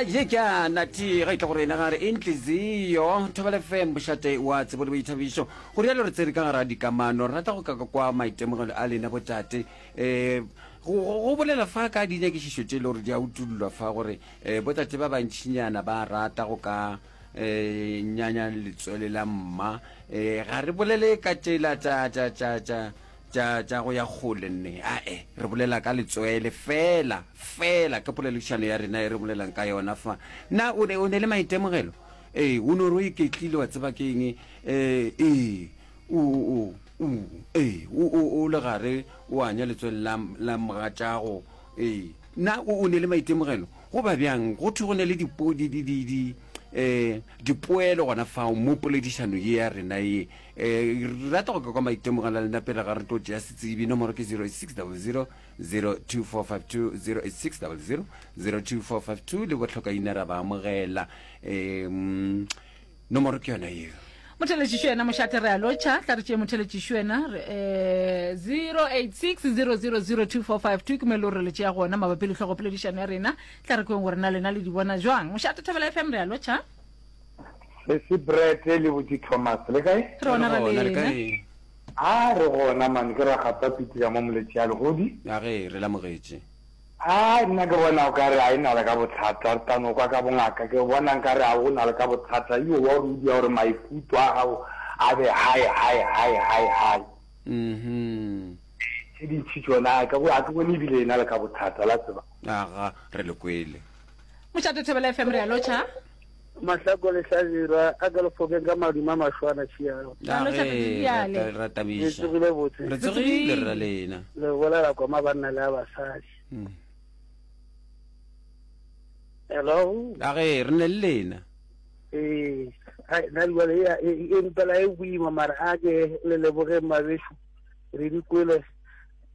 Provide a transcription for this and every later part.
je ka nati ga itla gore ena gare intliziyo thobele fm bošate wa tsebo le boithabišo go rialo re tsere ka gara dikamano rata go kaka kwa maitemogelo a lena botate um go bolela fa ka dinyakišišo tše e le gore di a utullwa fa gore um botate ba bantšhinyana ba rata go ka um nyanya letswele la mma um ga re bolele ka tšela tša tša, tša go ya kgole, nne, ae, re bolela ka letswele, feela, feela ke poledišano ya rena e re bolelang ka yona fa. Na o ne, o ne le maitemogelo? Ee, o no re o iketlile, wa tseba ke eng? Ee, ee, o, o, o, ee, o, o, o le gare, o anya letswele la, la mogatšago. Ee. Na o, o ne le maitemogelo? Go ba bjang? Go thwe go ne le dipo, di, di, di, di, um dipoelo gona fao mo poledišano ye ya rena ye um re rata go ka kwa maitemogelo a lena pele ga re tlo tšea setsebi nomoro ke 08600 02452 08600 02452 le botlhokaina ra ba amogela um nomoro ke yona yeo motheletšišo yena mošate re a lotšha tla re tšee motheletšišo yena um 086 000 2452 ke mo e le gore le tšea gona mabapi le tlhogopoledišano ya rena tla re kweng gore na lena le di bona jwang mošate thabela fm re a lotšha sesi brete le botse thomas le kae re ona ra lena a re gona mane ke ragapa pitila mo moletši ya legodi ya ge re lamogetše a nna ke bona o ka re a e na le ka bothata re tano kwa ka bongaka ke bona nka re a o na le ka bothata yo wa rudi ya gore maikutlo a gago a be hae hae hae hae hae mhm tse dintšhi tsona a ke bone ebile e na le ka bothata la tseba Aga, re le kwele. Mošate Thobela FM re a lotšha. Mahlako le hlabirwa a ka lefokeng ka maduma a mašwana šiago re tsogile botse re tsogile re lena le bolela koma banna le a basadi hmm. hello a ge re ne le lena ee na jale e mpela e boima mara a ke le lebogeng mabešo re dikwele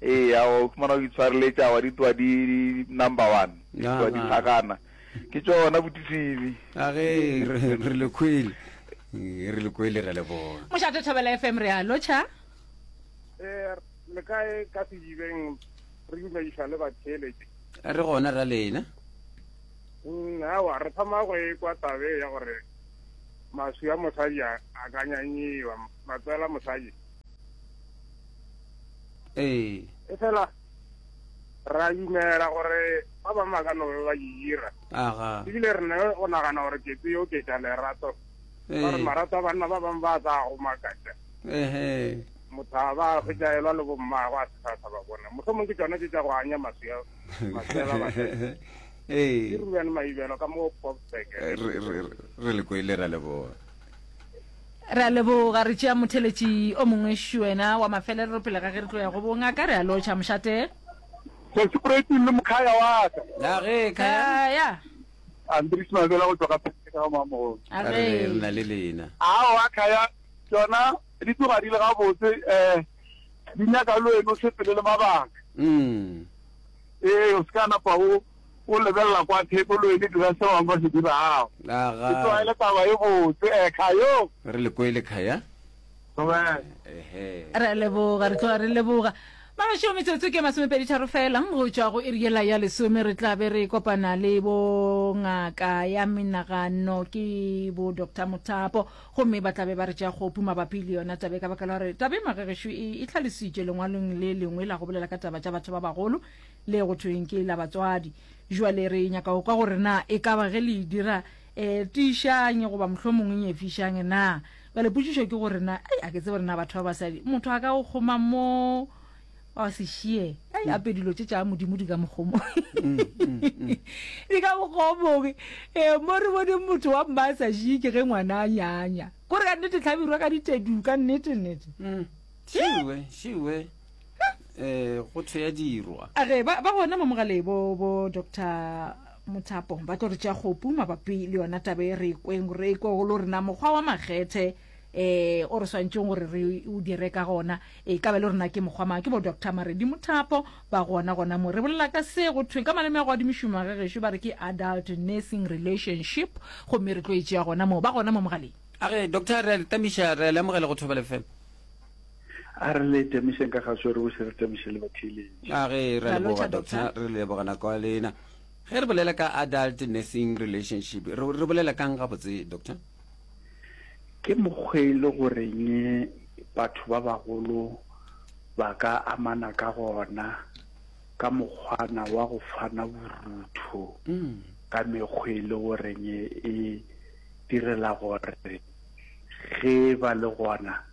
Eya o khumana o di tshwareletša wa di twa di number one. Di twa di phakana. Ke tšona botisibi. A ge re le khwele. Re le khwele re le bona. Mošate Thobela FM re a lotšha. Eh le kae ka se jibeng re dumediša le batheeletše. Re gona ra lena. Mm, awa re thoma go e kwa tabe ya gore maswi a mosadi a ka nyanyiwa matswela mosadi ee e fela ra dumela gore ba bangwe ba ka no be ba e dira aga ebile re ne o nagana gore ke tse yo ke tša lerato ba re marato a banna ba bangwe ba sa go makatša ehe motho a ba fetjaelwa le bommago a se sa sa ba bona motlho mongwe ke tsona tse tša go anya maswea maswela ba ee ke ruben maibelo ka mo popsek re le koile ra leboa Re a leboga, re tšea motheletši o mongwe šuena wa mafelelero pele ga ge re tlo ya go bongaka. Re a lotšha, mošate. Kgoši Proeting le mokhaya wa ka. Na ge khaya? Khaya. Andries Mabela go tšwa ka Phethe ka Mamogolo. A re re na le lena. Aowa khaya, tšona di tloga di le gabotse, um di nyaka le wena o sepele le mabaka. Umm. Ee, o se ka napa o O lebelela kwa theko o lo e le dira se bangwe ba se dirago. Aga. Ke tlwaele taba e botse. Eh, Khayo. Re le kwele, Khaya. Dumela. Ehe. Re a leboga, re tloga re leboga. Mabašo metsotso ke masomepedi tharo fela go tšwa go iri yela ya lesome re tla be re kopana le bo ngaka ya menagano ke bo doctor mothapo gomme ba tlabe ba re tša kgopu mabapi le yona tabe ka baka la gore tabe magegešo e, e tlhalisitše lengwalong le lengwe la go bolela ka taba tša batho ba bagolo le go thweng ke la batswadi jwale re nyaka go kwa gore na e ka ba ge le e dira um tiišang goba mohlho mongwe e nyefišang na jwale potsišo ke gore na ei a ke tse gore na batho ba basadi motho a ka go kgoma mo wa sešie ei ape dilo tše tša modimo di ka mokgomo mm, mm, mm. di ka mokgomong um mo re boneng motho wa mma a sa šie ke ge ngwana a nyanya kore ka nnete tlhabirwa ka ditedu ka nnete nnete shiwe shiwe um go thwe ya dirwa a ge ba ba gona mamogalei bo bo doctor mothapo ba tlo re tša kgopu mabapi le yona tabe re e kweng re e kwe go lo rena mokgwa wa makgethe eh o re swantšeng gore re o dire ka gona e ka ba le rena ke mokgwa mang ke bo doctor maredi mothapo ba gona gona mo re bolela ka se go thweng ka maleme a go adimišomo ge gešo ba re ke adult nursing relationship gomme re tlo e tšea gona moo ba gona mo mogaleng a ge doctor re a le tamiša re a le amogela go thoba lefela A re le temošeng ka ga swere o se re temoše le batheeletši. A ge re a leboga doctor re leboga nako ya lena. Ge re bolela ka adult nursing relationship re re bolela kang gabotse doctor? Ke mokgwa e le goreng batho ba bagolo ba ka amana ka gona ka mokgwana wa go fana borutho ka mekgwa e le goreng e direla gore ge ba le gona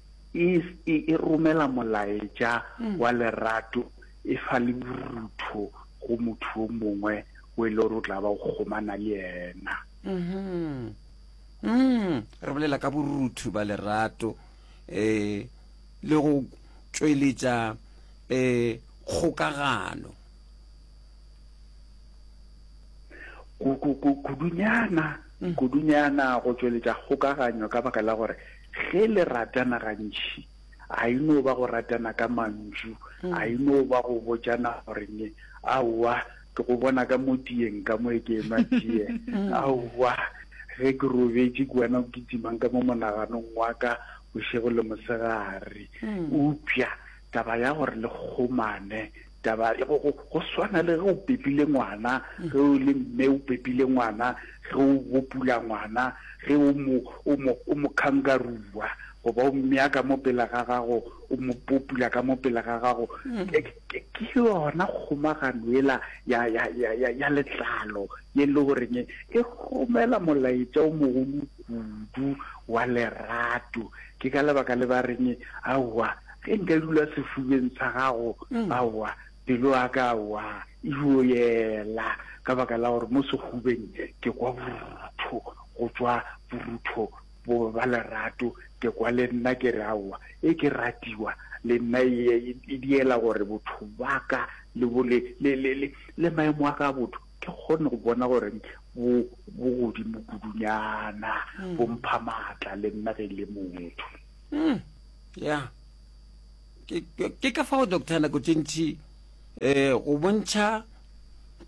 Is e e romela molaetša wa lerato e fa le borutho go motho yo mongwe o e le gore o tla ba o kgomana le yena. Re bolela ka borutho ba lerato le go tšweletša kgokagano. kudunyana mm. kudunyana go tšweletša kgokaganyo ka baka la gore ge le ratana gantši a e no ba go ratana ka mantšu mm. a e no ba go botšana goreng aowa ke go bona ka mo tiyeng ka mo e ke enwa tiye mm. aowa ge ke robetse ke wena o kitsimang ka mo monaganong wa ka bošego le mosegare upša taba ya gore le kgomane Taba e go, go, go swana le ge o pepile ngwana, ge o le mme o pepile ngwana, ge o bopula ngwana, ge o mo, o mo, o mo khangarua, goba o mmea ka mo pela ga gago, o mo popula ka mo pela ga gago. Ke, ke, ke yona kgomagano ela ya, ya, ya, ya, ya letlalo, ye le goreng e romela molaetša o mogolo kudu wa lerato. Ke ka lebaka le ba reng, Aowa, Ge nka dula sefubeng sa gago, aowa, pelo ya ka aowa, e yo yela, ka baka la gore mo sehubeng ke kwa borutho, go tšwa borutho bo ba lerato, ke kwa le nna ke re aowa, e ke ratiwa, le nna e, e diela gore botho ba ka le bo le, le, le, le, le maemo a ka a botho ke kgone go bona gore bo, bo godimo kudunyana, bo mpha maatla le nna ge e le motho. mm, ya ke ka fao doctor nako tše ntši um go bontšha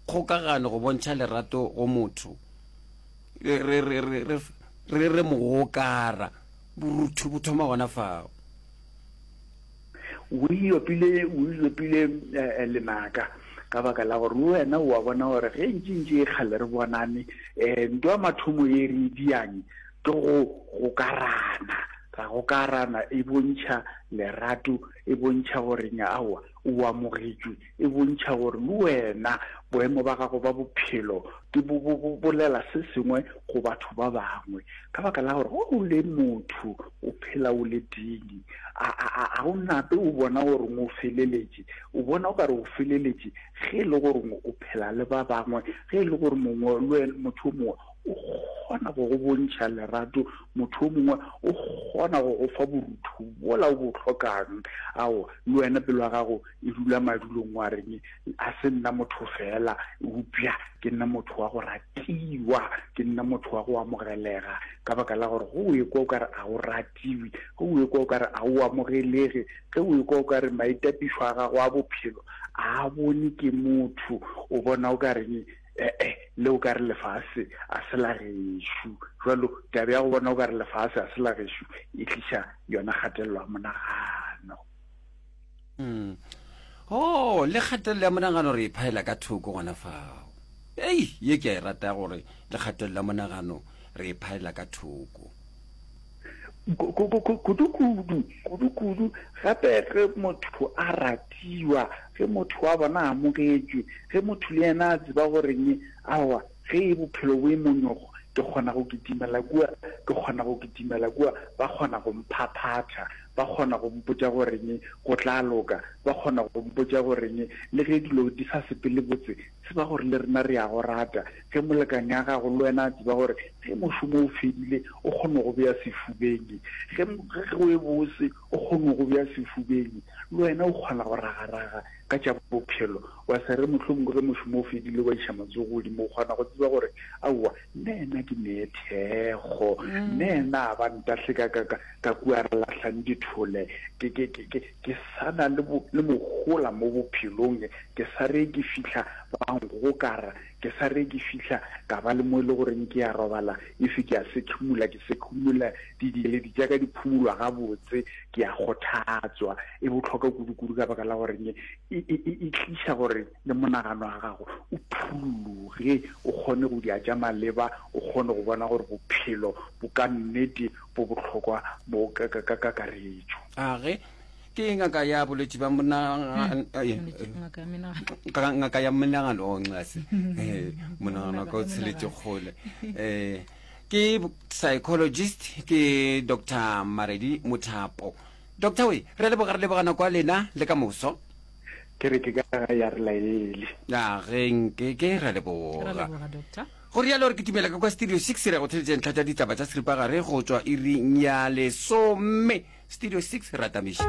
kgokagano go bontšha lerato go motho re re mogokara borutho bo thoma gona fao o iopile o iopile eh, lenaka ka baka la gore wena o a bona gore ge ntši ntši e kgale re bonane um eh, nto ya mathomo ye re diang ke go gokarana ra gokarana e bontšha lerato e bontšha gore nyaowa o amogetšwe e bontšha gore le wena boemo ba gago ba bophelo di bo bolela se sengwe go batho ba bangwe ka baka la gore o le motho o phela o le dini a o nape o bona gore o feleletše o bona o ka re o feleletše ge e le gore o phela le ba bangwe ge e le gore mongwe le wena motho o mongwe o kgona go go bontšha lerato motho o mongwe o kgona go go fa borutho bola o bo tlhokang ao le wena pelo ya gago e dula madulong wa reng a se nna motho fela upša ke nna motho wa go ratiwa ke nna motho wa go amogelega ka baka la gore go o ekwa o kare a o ratiwe go o ekwa o kare a o amogelege ge o ekwa o kare maitapišo a gago a bophelo a bone ke motho o bona o ka reng ee le o ka re lefase a se la gešo jalo tabe ya go bona o ka re lefase a se la gešo e tliša yona kgatelelo ya monagano Mm. Oh, le kgatelelo ya monagano re e phaela ka thoko gona fao. Ei, ye ke a e rata gore le kgatelelo ya monagano re e phaela ka thoko. Ku- ku- ku- ku- Kudu-kudu, kudu-kudu, gape ge motho a ratiwa, ge motho wa bona a amogetšwe, ge motho le yena a tseba gore'ng, aowa, Ge e bophelo bo e monyogo, ke kgona go kitimela kua, ke kgona go kitimela kua, ba kgona go mphaphatha, ba kgona go mpotša goreng go tla loka, ba kgona go mpotša goreng le ge dilo di sa sepele botse, tseba gore le rena re a go rata. Ge molekane a gago le wena a tseba gore ge mošomo o fedile o kgona go go bea sefubeng, ge, ge go e bose, o kgone go bja sefubeng, le wena o kgona go ragaraga ka tša bophelo, wa se re mohlomongwe ge mošomo o fedile wa iša matsogo godimo, o kgona go tseba gore aowa, nna ena ke nee thekgo, nna ena a ba ntahle ka, ka, ka, ka kua re lahlang dithole, ke, ke, ke, ke, ke sa na le, bo, le mohola mo bophelong, ke sa re ke fihla ba nkgokara, Ke sa re ke fihla ka ba le mo e le goreng ke ya robala, e se ke a sekhimola, ke sekhimola didieledi tša ka di phumulwa gabotse, ke a kgothatswa. E bohlokwa kudu-kudu ka baka la goreng e, e, e, e, e tliša gore le monagano wa gago o phuruloge, o kgone go dia tša maleba, o kgone go bona gore bophelo bo ka nnete bo bohlokwa bo ka, ka, ka kakaretšo. A re, ke ngaka ya bolwetši ba ngaka ya menagano o ncase monagano ka o tsheletse kgole um ke psychologist ke dr maredi mothapo doctor we re leboga re lebogana kwa lena le ka moso ke re ke ka ga ya re laele ya genke ke ra leboga Go realo re kitimela ka kwa Studio Six re ya go theletša ntlha tša ditaba tša seripagare go tšwa iring ya lesome. Studio Six re atamiše.